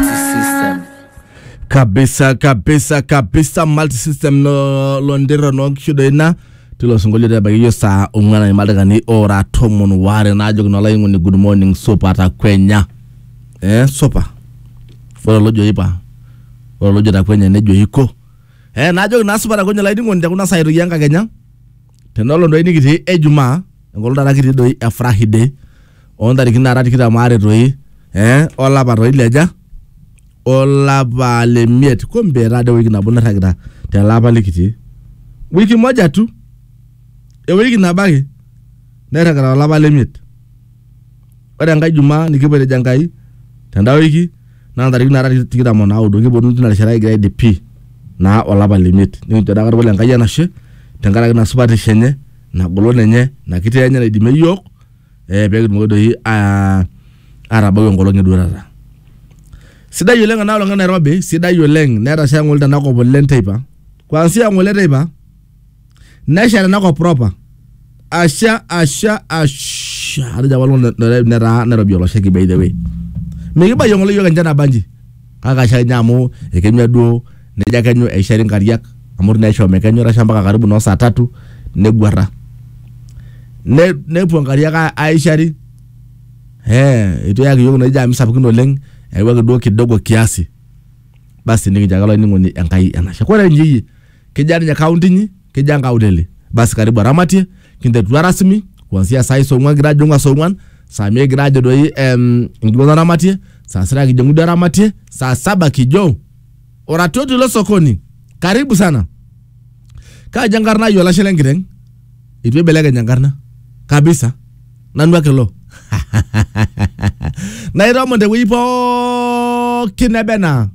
multisystem kabisa kabisa kabisa multisystem lo- londira nonkishudo ina tilo sinkolio tebakiyo saa ong'uan aimadakani ora tomon waare naajoki nolaing'oni good morning supa takwenya eh, supa ore olojo ipa ore olojo takwenya nejo iko eh, naajoki naa supa takwenya olainining'oni tekuna saai toki enkakenya tenolo doi nikitii ejumaa enkolong taata kitii doi e friday ontarikini naara tikitam aare toi eh, olapa toi leja olapa le miet kumbe etaa de wiki nabo nairragita tele apa likitii wiki moja tu ewiki nabo ake nairragita olapa le miet ore enkae jumaa nikipoitejo enkai tenda wiki naa ntarikini naara tikitam o naudo kiponu tina rishata kigira aidip pii naa olapa le miet nikincho daa katukul enkai enashe tenkaraki ina supatisho enye ina golon enye ina kiti enye naidimie iyiook eh, pee kitumoki doi ah, atabau enkolong eduatata sidai oleng ena olong e nairobi sidai oleng netasha ng'ole tenakop oleng teipa kuanzia ng'ole teipa nesha tenakop proper asha asha asha atejo apa olong netaa nairobi olosheki by the way mikibayie ng'ole yiok enchan nabanji kake asha ninye amu ekenyua duo nejo akenyu eishari nkariak amu itu naa isho mekenyu etasha mpaka karibu noo saa tatu neguarra ne, nepuo nkariak a- aishari eh, itu eyaki yiok inoshi jami sapukin oleng eyawuaki duo kidogo kiasi basi nikincho ake olainining'oni Enkai enashe kore inyi iyie kejaa ninye kaunti inyi Kija nkaulele. Basi karibu aramatie, kinterutua rasmi kuanzia saa hizo ong'uan kigira ajong'u saa ong'uan, saa mia kigira ajo doi em, enkiguana aramatie, saa sita kijong'u duo aramatie, saa saba kijo oratioti lo sokoni. Karibu sana. Kaja enkarna ai olashe lenkiteng? Eitu eibelekeny enkarna kabisa. Nanu ake ilo. Nairomon tewueji pookin nebe naa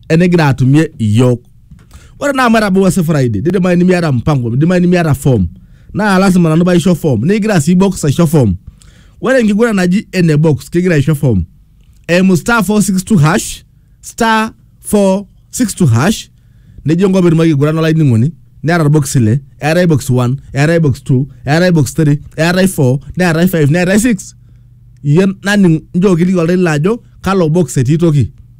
enigira atumie iyiook. ore naa amu etabawua si friday nidimayu nimiata mpango nidimayu nimiata form naa lasima nanu paisho form nikigira sii box aisho form ore enkiguran naji ene box kigira aisho form eimu star 462 hash star 462 hash nejo enkop etum akiguran olainining'oni neeta irbokisi ile eetae box 1 eetae box 2 eetae box 3 eetae 4 neetae 5 neetae 6 iyie naning njoo kiliki oltau lino ajo kalo box etii toki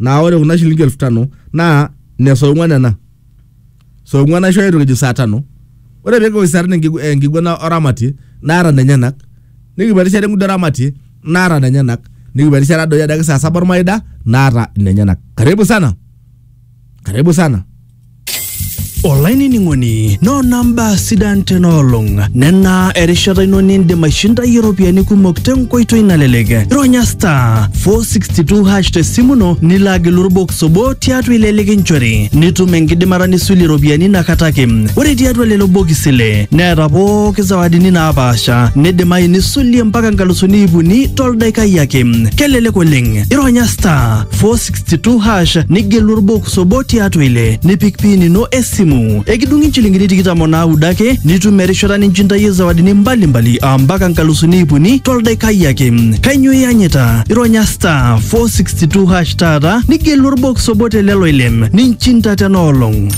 naa ore kuna shilingi elfu tano naa ne saa ong'uan ena saa ong'uan aishooyo toki ejo saa tano ore pee kikoki saa tano enkigu- eh, enkiguana oramatie naata nenyenak nikipuo erishata engudo oramatie naata nenyenak nikipuo erishata doi adake saa saba ormaida naata nenyenak karibu sana karibu sana olainining'oni noona mbaa sidan tena olong nena erishata ino nindim aishindayie iropiyiani kumok tenkoitoi nalelek ironya star 462 hash tesimu ino nilo agilu orbox obo tiatua ile likinchori nitum enkidimata nisulie iropiyiani inakata ake ore tiatua lelo bokisi ile neeta pooki zawadini naapaasha nidimayu nisulie mpaka nkalusuni iip uni toldaikai ake kelelek oleng ironya star 462 62 hash nigelu orbox obo tiatua ile nipik pin ino esimu ekidung'i inchilingini tikitam onaudo ake nitum erishata ninchintayie zawadini mbalimbali ampaka nkalusuni iip uni toldaikai ake kainyo iyanyita ironya star 462 hash taata nigelu orbox obo telelo ile ninchinta tena olong